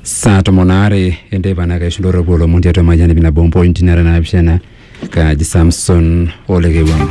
saa tomon aare enteipa naa kaisho ndorropu olomon tiatua mayian ipi nabo mpointi nara naapishana kaji samson olekewang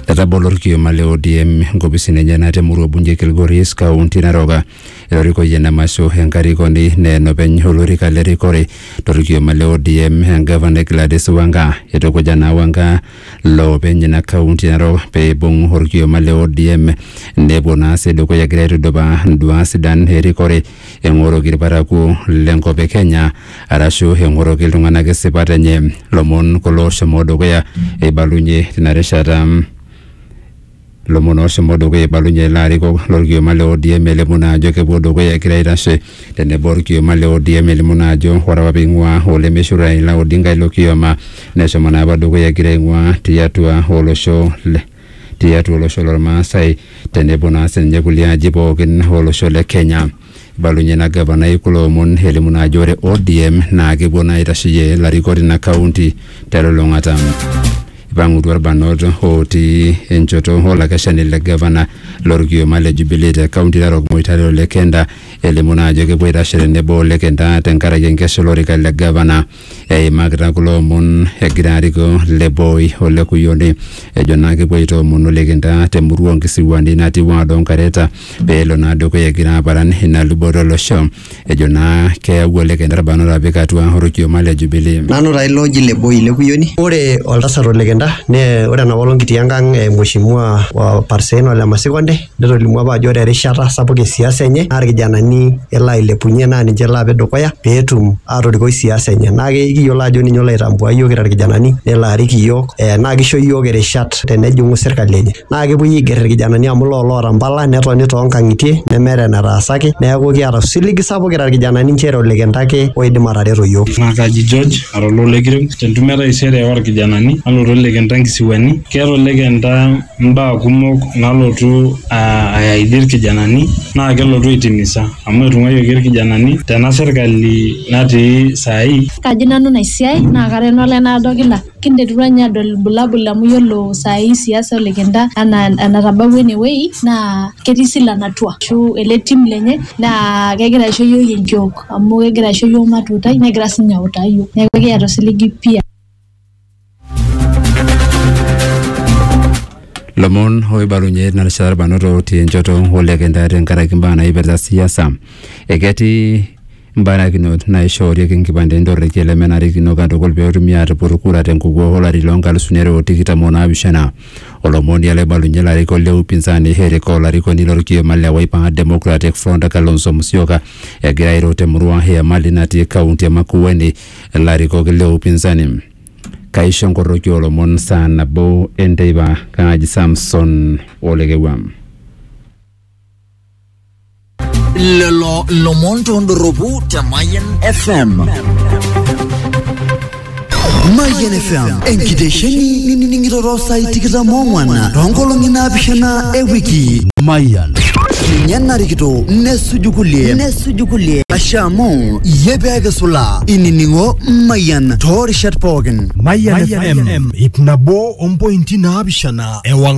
etabolo orkioma le odm nkopisini enyenak temurua bunge kilgoris kaunti naroka erorikoyie ena masho enkarikoni naa enopeny olorika le rikore torkioma le odm engavana Gladys Wanga eitukuja naa Wanga loopeny ina kaunti e Narok pee eibung orkioma le ODM nepuo naa sii dukuya egira aitudupaa nduaa sidan erikore eng'oroki irparakuo lenkop e Kenya arashu eng'oroki iltung'anak isipat enye. Lomon kulo oshomo dukuya eibalunyie tina rishata. Lomon oshomo dukuya eibalunye ilo arikok lolkioma le ODM elimu naa ajo kepuo dukuya egira aitashe tenebo olkioma le ODM elimu naa ajo ore apa peing'uaa olemeishu Raila Odinga ilo kioma neshomo naa apa dukuya egira aing'uaa tiatua olosho le tiatua olosho lolmaasai tenebo naa sininye kulie aji pookin olosho le Kenya. Ibalunye ina gavanai kulo omon elimu naa ajo ore ODM naa kepuo naa aitasheyie ilarikok tina kaunti telulung'ata. Ipang'utua irbanot ootii enchoto olakeshani le gavana lorkioma le Jubilee te kaunti Narok Moitare o Lekenda elimu naa ajo kepuo aitashe tenebo o Lekenda tenkaraki enkesha olorika le gavana. eimakita kulo omon egira arikoo Leboi o Lekuyoni ejo naa kepuo aitoomonu likintaa te murua onkisiwuani natii ward Onkareta pee elo naa dukuya egira aparan ina luboto olosho ejo naa keyawua likinta irbanot apik atua orkioma le Jubilee. Nanu taa ilo oji Leboi Lekuyoni. Ore oltasat Olekinta naa ore enapaolong kitii enkang e Mheshimiwa wa Parsein Ole Masikonde netolimu apa ajo ore erishata sapuk e siasa enye naa irkijanani elo ailepunye naa ninche elo apik dukuya peetum atorikoi siasa enye naa kiyiolo ajo ninye olo aitambua iyiook kira irkijanani nelo arik iyiook eh, naa kisho iyiook irishat tenejing'u sirkali enye naa kepuoi aigerr irkijanani amu loo loota mpala netoni toonkang'itie nemeeta enetaasaki neeku kiata osiligi sapuk kira irkijanani nchere olikintake ake oidim atareto iyiook naa kaji George ara oloo lekirem tentumo e taisere orkijanani nalotu olekenta nkisiwuani keeta olekenta mbaa kumok nalotu ayaidia irkijanani naa kelotu aitimisa amu etung'uayioki irkijanani tena sirkali natii saai. Kaji nanu ina siai naa kara eno lae naado kila kinterutua ninye adol irbulabul amu yiolo saai siasa olikinta anaa enatabawua ene wuei naa ketii silan atua ashu ele tim lenye naa kegira aisho iyiook enkiok amu kegira aisho iyiook matuutai negira siinye autaa iyiook neeku ekiata osiligi pii. lomon oibalunye na rishata irbanot otii enchoto olekenta tenkaraki imbaa naipirta siasa eketii mbarakinot naishoorieki nkipandeni torrekie lemenarikino katukul peetumi aatupur kura tenkukuo olari loo nkalusuni are o tikitam o naapishana olomoni ele oibalunye ilarikok le upinzani Eric olarikoni lorkioma le Wiper Democratic Front Kalonzo Musyoka egira airo temurua e Emali natii kaunti e Makueni ilarikok le upinzani. Kaisho enkoroki oo lomon saa nabo e nteipa, kaaji Samson o Lekewua. Lelo lomon tondorropu te Mayian FM. Mayian FM, enkitesheni ninining'ito too saai tikitam oong'wan too nkolong'i naapishana e wiki. Mayian. Ninye narikito nesuju kulie. suju kulie ashe amu iyie pee kisula inining'o Mayian toorishat pookin. Mayian FM ip nabo ompointi naapishana ewang'an.